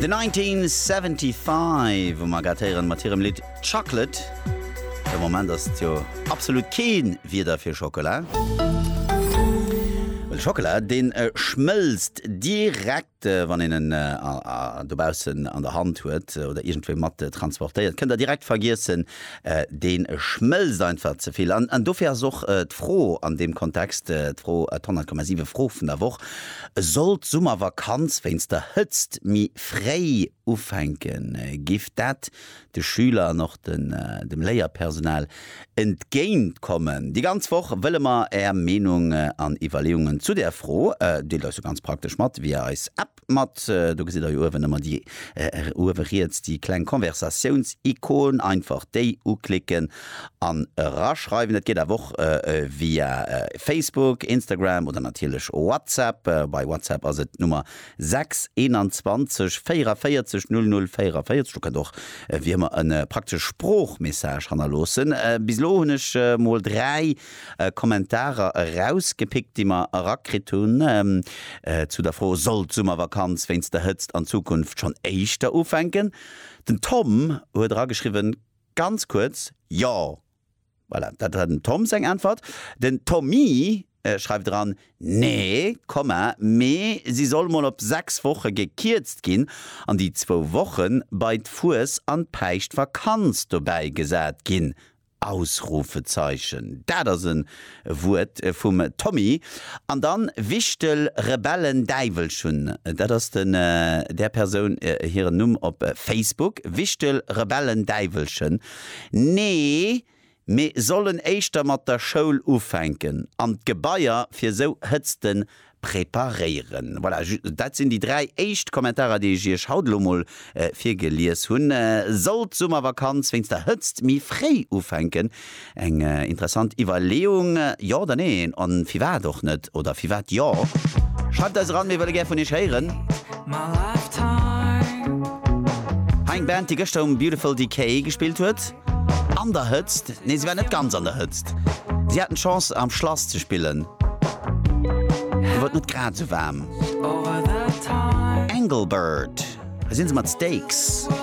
The 1975 um Agathe héieren mat hirem Lidd Chocolate. De Moment ass et jo absolut keen Wieder fir Schockela. Well Schockela deen schmëlzt direkt wann een en dobaussen an der Hand huet oder iergendwou mat transportéiert. Kënnt der direkt vergiessen, deen schmëlzt einfach zevill. An dofir ass och d'Fro an deem Kontext d'Fro, d' 100,7 Fro vun der Woch. Sollt d'Summervakanz wéinst der Hëtzt méi fréi ufänken, géif dat de Schüler an och dem Léierpersonal entgéint kommen. Déi ganz Woch wëlle mer Är Meenung an Iwwerleeungen zu där Fro. Deelt eis se ganz praktesch mat via eis App mat, do gesitt der jo uewen ëmmer déi, uewe riets, déi kleng Konversatiouns-Ikon, einfach déi uklicken an eraschreiwen. Dat geet awer och via Facebook, Instagram oder natierlech WhatsApp. Bei WhatsApp ass et d'Nummer 6 21 44 00 44. Do kënnt och wéi ëmmer e praktesche Sproochmessage hannerloossen. Bis elo hunn ech mol 3 Kommentarer erausgepickt, déi mer erakritt hunn zu der Fro, Soll d'Summervakanz wéinst der Hëtzt an Zukunft schonn éischter ufänken? Den Tom huet erageschriwwen, Ganz kuerz, Jo! Voilà, dat war dem Tom seng Äntwert. Den Tommy schreift eran, Nee, Komma, mee si soll mol op sechs Woche gekierzt ginn an déi zwou Woche bei d'Fues an d'Päischtvakanz dobäi gesat ginn! Ausrufezeichen. Dat ass en E Wuert vum Tommy. An dann Wichtel Rebellen Däiwelchen, dat ass den där Persoun hiren Numm op Facebook. Wichtel Rebellen Däiwelchen, Nee, mir sollen éischter mat der Schoul ufänken an d'Gebaier fir sou Hëtzten Preparéieren. Voilà, dat sinn déi dräi éischt Kommentarer, déi ech Iech haut elo mol virgelies hunn. Sollt d'Summervakanz wéinst der Hëtzt méi fréi ufänken? Eng interessant Iwwerleeung, jo oder neen? A firwat och net? Oder firwat jo? Schreift eis eran, mir wëlle gär vun Iech héieren. Hei eng Band, déi gëschter um Beautiful Decay gespillt huet. An der Hëtzt? Nee, se war net ganz an der Hëtzt. Si haten d'Chance, am Schlass ze spillen. Do war et net grad esou waarm. Engelbert, Wou sinn se mat Steaks?